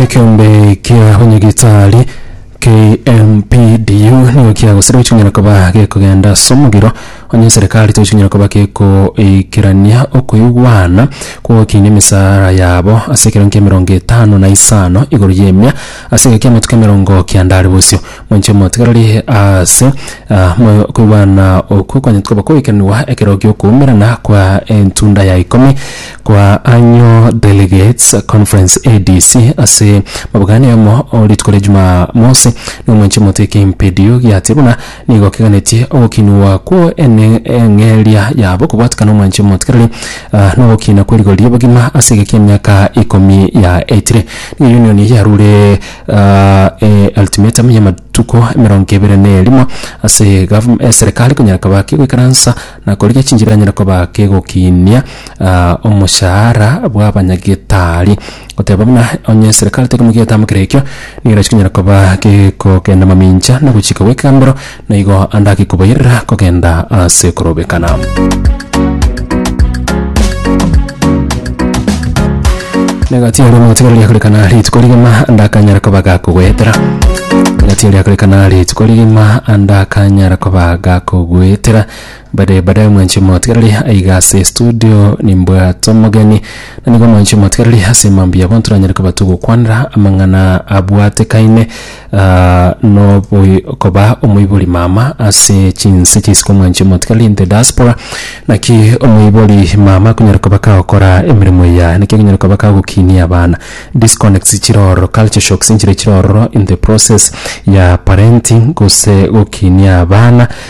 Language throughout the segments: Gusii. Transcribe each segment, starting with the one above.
Ekeombe kia Onyagitari, KMPDU, nigo kiagosire gochung'era koba gekogenda ase omogiro onye eserekari tochung'era koba gekoikerania okoigwana kw'ogokinia emesaara yabo ase ekero nkia emerongo etano na isano igoro y'emia ase egeka kia amatuko emerongo kianda are bosio. Moinche omotigareri ase ah, moyo okoigwana okwo kwanyetwe koba koikeranigwa ekero gi'okoumerana kwa entunda ya ikomi Kwa Annual Delegates Conference, ADC, ase mabuga ane omo o rituko ria Jumamosi, na omwanchani omote Kimpidio giatia buna nigo keganetie ogokinigwa kw'o ene eng'eria yabo kobwatikana omwanchani omotikereri na ogokina kwe rigori ri'obogima ase egeki emiaka ikomi yaetire. Nigo Union eye yarure e ultimatum y'amatuko emerongo ebere na erimo ase Serikali konyara kobaki goikaransa na korigia chinchera yanyare koba kegokinia omoshahara bw'abanyagetari, goteba buna onye eserekari teri mogia etamokera ekio, nigo chikonyara koba kegokenda mamincha na gochika gw'ekegambero, na igo ande ake kobairera kogenda ase korobekana. Negati aria omotigano riakorekana rituko rigima ndakanyara koba gakogoetera negati aria akorekana rituko rigima ndakanyara koba gakogoetera bade bade mwanchi omotigareri aiga ase studio nimbwate omogeni na nigo mwanchi omotigareri ase mambia bonto nanyare koba togokwanera amang'ana abwatekaine Noboi koba omoibori mama ase chinse chi'isiko omwanche omotigari in the diaspora. Naki omoibori mama akonyara koba kagokora emeremo eya, naki akonyara koba kagokinia abana. Disconnects chire ororo, culture shocks nchire chire ororo in the process ya parenting gose gokinia abana.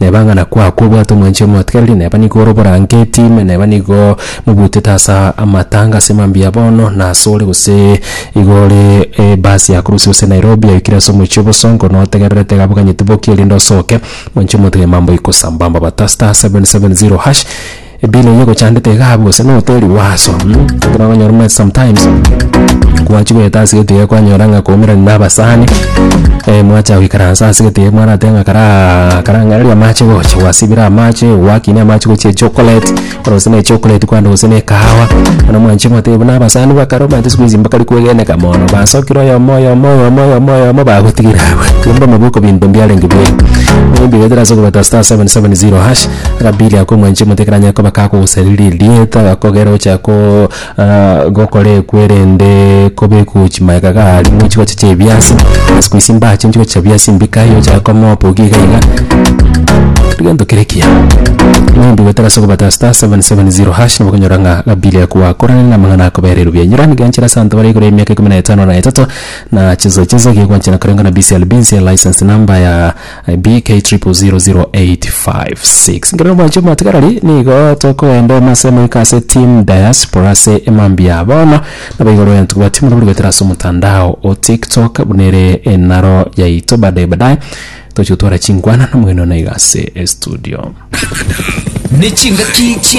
Neba ng'a nakwo aa kobwate omwanchia omotigareri, neba nigo ore oborangeti, ime neba nigo mobutete ase amatanga ase mambia bono nasore gose igo ore ebasi yakorusia gose Nairobi yaikire ase omochie obosongo notegererete iga aboganyete bokie erinde osoke, mwanchia omotigareri mamboiko sambamba bata *770#. Ebina eyi egochandete igaa bose noteri waso ekero okonyora omanyete sometimes gwachi goeta ase egento iga kwanyora ng'a kwaumerani na abasani mwacha goikaransa ase egento iga mwarateba ng'a karaa karang'areria amache gocha gwasibire amache gwakinia amache gochia echocolate bono gose na echocolate kwande gose na ekahawa bono mwanche motebi buna abasani ba kare omanyete siku hizi mbakare kwegeneka mono basokire oyomo oyomo oyomo oyomo oyomo bagotigire abwo. Kero mbamobe okobintwa mbiarenge bire mambia goetera ase okobeta star seven seven zero hash. Rabili akomwancha emotekera ya Yakobo akagosariria erieta agakogera gochia ko- ah, gokora ekwere ende kobekwa chimaega gari mu chigocha chia ebiasi ase koisia mbache chigocha chia biasi mbika aye ocha koma opoki iga iga keri gento kere ekiya maybe gotera ase ogobata star 770 hash nabo okonyora ng'a Rabili akoakorana na amang'ana akobera erube enyiro iga nchere ase abanto bare igoro y'emiaka ikomi na etano na etato na chiso chiso gigoanchana koreng'ana BCLB nse license number ya BK000856 Ngerie nomwanche omwatigarari nigo tokoenda emase moika ase Team Diaspora ase emambia bono nabo igoro yanto kobua timu nabori goetera ase omotandao o TikTok buna ere enaro yaito badaye badaye toche gotwara chinkwana nomogeni one iga ase estudio. Ne chingaki chia